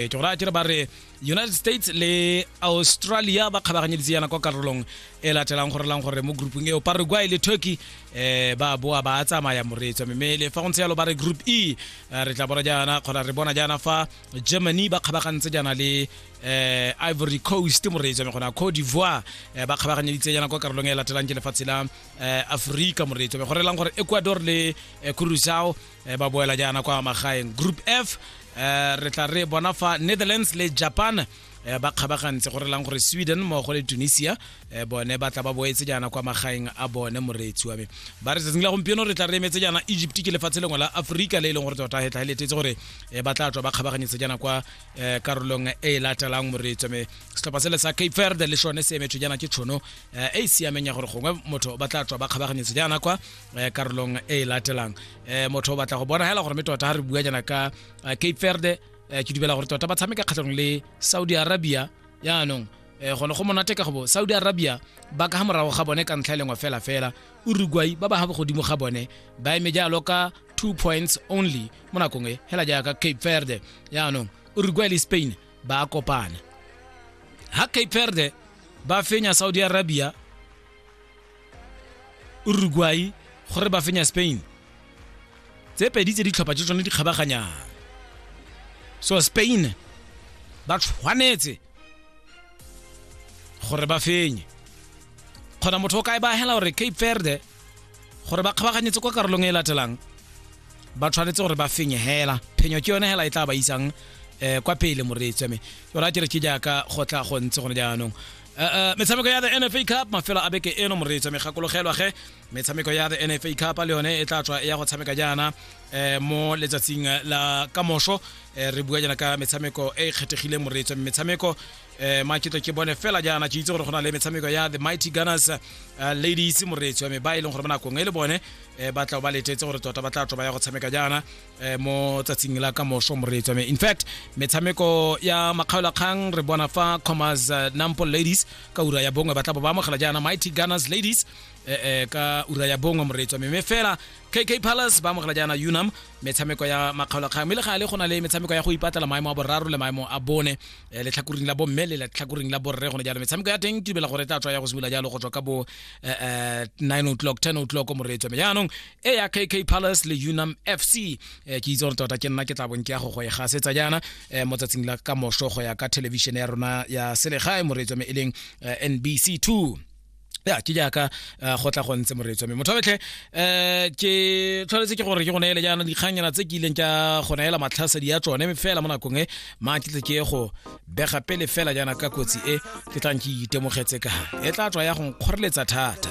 e ke gore a kere ba re united states le australia ba kgabaganyeditse yana kwa karolong e latelang gore lang gore mo groupung eo paraguay le turkey um ba boa ba tsamaya moreetswa mme le fa go ntse yalo ba re group e eh, re tla bona jaana kgona re bona jaana fa germany ba kgabagantse jaana le eh Ivory Coast moreetsa me gona Cote d'Ivoire eh, ba kgabaganyeditse yana kwa karolong e latelang ke lefatshe la eh, Afrika moreetsa me go relang gore Ecuador le eh, Curacao e ba boela jaana kwa magaeng group f um re tla re bona fa netherlands le japan um ba kgabagantse go relang gore sweden mmogo le tunisia um bone ba tla ba boetse jaana kwa magaeng a bone moreetsi wa me ba re tsatsing la gompieno re tla re emetse jaana egypt ke lefatshe lengwe la aforika le e leng gore tota hetla e letetse gore um ba tla tswa ba kgabaganyetse jaana kwa um karolong e e latelang moreetsi wa me setlhopha sele sa cape verde le sone se emetswe jaana ke tshono um e e siameng ya gore gongwe motho ba tla tswa ba kgabaganyetse jaana kwa eh, karolong e e latelang eh, motho o batla go bona hela gore me tota ga re bua jana ka eh, cape verde eh, ke dubela gore tota ba tshameka kgatlhanong le saudi arabia yaanong eh, gone go monate ka gobo saudi arabia ba ka ga morago ga bone ka ntlha e lengwe fela fela uruguay ba ba ga bogodimo ga bone ba eme jalo ka two points only mo nakong e hela jaaka cape verde yaanong uruguay le spain ba a kopana ha cape verde ba fenya saudi arabia uruguay gore ba fenya spain tse pedi tse ditlhopha tse tsone di kgabaganyang so spain ba tshwanetse gore ba fenye kgona motho o kae ba hela gore cape verde gore ba kgabaganyetse kwa karolong e latelang ba tshwanetse gore ba fenye hela phenyo ke yone hela e tla ba isang um kwa pele moreetsi wa me yona ke re ke jaaka go tla go ntse gone jaanong eh, eh, metshameko ya the nfa cup mafelo a beke eno moreetsa megakologelwa ge metshameko ya the nfa cup le yone e tla tswa ya go tshameka jaana um mo letsatsing la kamoso um re bua jaana ka metshameko e e kgethegileng moreetso metshameko um maketlo ke bone fela jaana ke itse gore go na le metshameko ya the mighty gunners ladies moreetso me ba e leng gore mo nakong e le bone um ba tla ba letetse gore tota ba tla tswa ba ya go tshameka jaana eh, mo tsatsing la ka moso moreetso me in fact metshameko ya makgaolakgang re bona fa commas eh, nampo ladies ka ura ya bongwe ba tla bo ba amogela jaana mighty gunners ladies eh, eh, ka ura ya bongwe moreetso me me fela kk palace ba amogela jaana unam metshameko ya makgaolakgang mme le ga le go na le metshameko ya go ipatlela maemo a boraro le maemo a bone eh, letlhakoring la bomme le letlhakoring la borre gone jalo metshameko ya teng ke dibela gore e tla tswa ya go simolola jalo go tswa ka bo eh, eh, 9 o'clock 10 o'clock moreetso me jaanong e ya kk palace le unam fc eh, ke itse gore tota ke nna ke tla bong ke ya go go e gasetsa jaana eh, mo tsatsing la ka moso go ya ka thelebišene ya rona ya selegae moreetso me e leng eh, nbc 2 ya ke jaaka eh, go tla go ntse moreetso me motho betlhe um ke tshwanetse ke gore ke go neele jaana dikganyana tse ke ileng ka go neela matlhasedi ya tsone fela mo nakong e maa ke tle ke go bega pele fela jaana ka kotsi e ke tlang ke itemogetse ka e tla tswa ya go nkgoreletsa thata